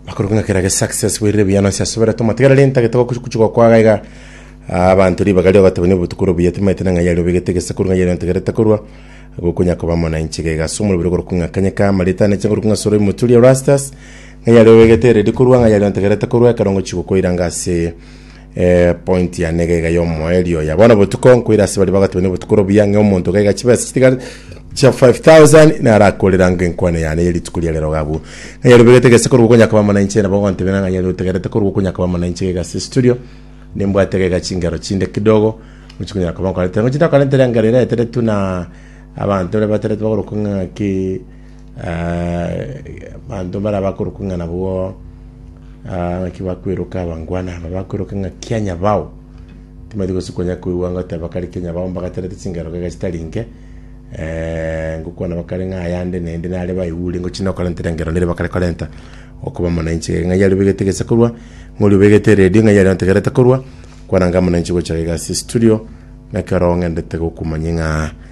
Makuru ng'a kera ge success bwerire buya nonsi asoberete omotigareri ntagete gokuchigwa kwa gaiga abantu ribaga rio batebani obotukuro buya timaete na ng'ai aria obegete gesekuru ng'ai aria ontegerete korwa gokonya koba mwananchi gaiga ase omorobere ogorokwa ng'a kanyeka marita ane chingorokwa ng'a soro imoturia rastas ng'ai aria obegete eredi korwa ng'ai aria ontegerete korwa ekero ngochigwa koiranga ase Eeh point yane iga iga ya omoeri oya bono botuko nkoira ase baria bagotiba ne obotuko robuya ng'e omonto gaiga chibesa chitigare chia 5000 naro akorera ng'e enkwane yane ya rituko ria rero gabu ng'a yarobegete gese korwa okonya koba mwananchi nabo ogontebera ng'a yari otegerete korwa okonya koba mwananchi gaiga ase estudio nimbwate gaiga chingero chinde kidogo gochi konyara koba nkorete ngochi ntakorentera engero ere eteretwe na abanto baria bateretwe bagorokwa ng'aki. Abanto baria bakoroka ng'a nabwo ah, ng'aki bakweroka abangwana aba bakweroka ng'a kia nyabao timati gose konya koigwa ngoteba kare kia nyabao mbagaterete chingero gega chitari nke eh, ngokwana bakare ng'a ayande naende nare baigure ngochi nokorentera engero nere bakare korenta okoba omonanchi gega ng'ai aria obegete gese korwa ng'ori obegete eredio ng'ai aria ontegerete korwa kwananga omonanchi gocha gega ase estudio nekero ng'endete gokumanyia ng'a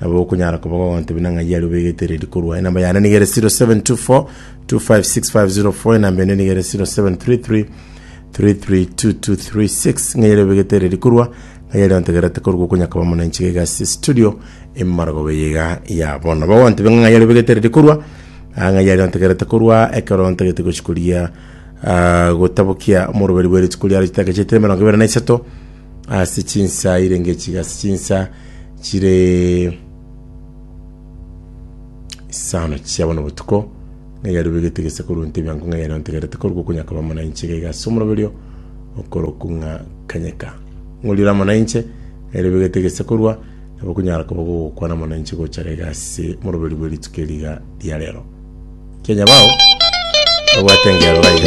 Nabo okonyara koba gogoteba buna ng'ai aria obegete redi korwa. Enamba yane niga ere 0724 256504 enamba ende niga ere 0733 332236 ng'ai aria obegete redi korwa ng'ai aria ontegerete korwa okonyakaba mono enchiga iga ase studio emaragobe yiga ya bono nabo gontebe ng'a ng'ai aria obegete redi korwa ah, ng'ai aria ontegerete korwa ekero ntagete gochikoria ah, gotabokia omoroberi bwe rituko riaro chitagechete emerongo ibere na isato ase chinsa irenge chiga, ase chinsa chire isano chia bono botuko, ng'a yarubegete gese korwa nte biango, ng'a yare ontegerete korwa gokonyaka bamo na inche, iga iga ase omoroberio okoroku ng'a kanyeka. Ng'orire amo na inche, ng'a yarubegete gese korwa, nabo okonyara koba gogokwana amo na inche gochara iga ase omoroberio bwe rituko eri iga ria rero. Kianya bao babwate engero iga iga.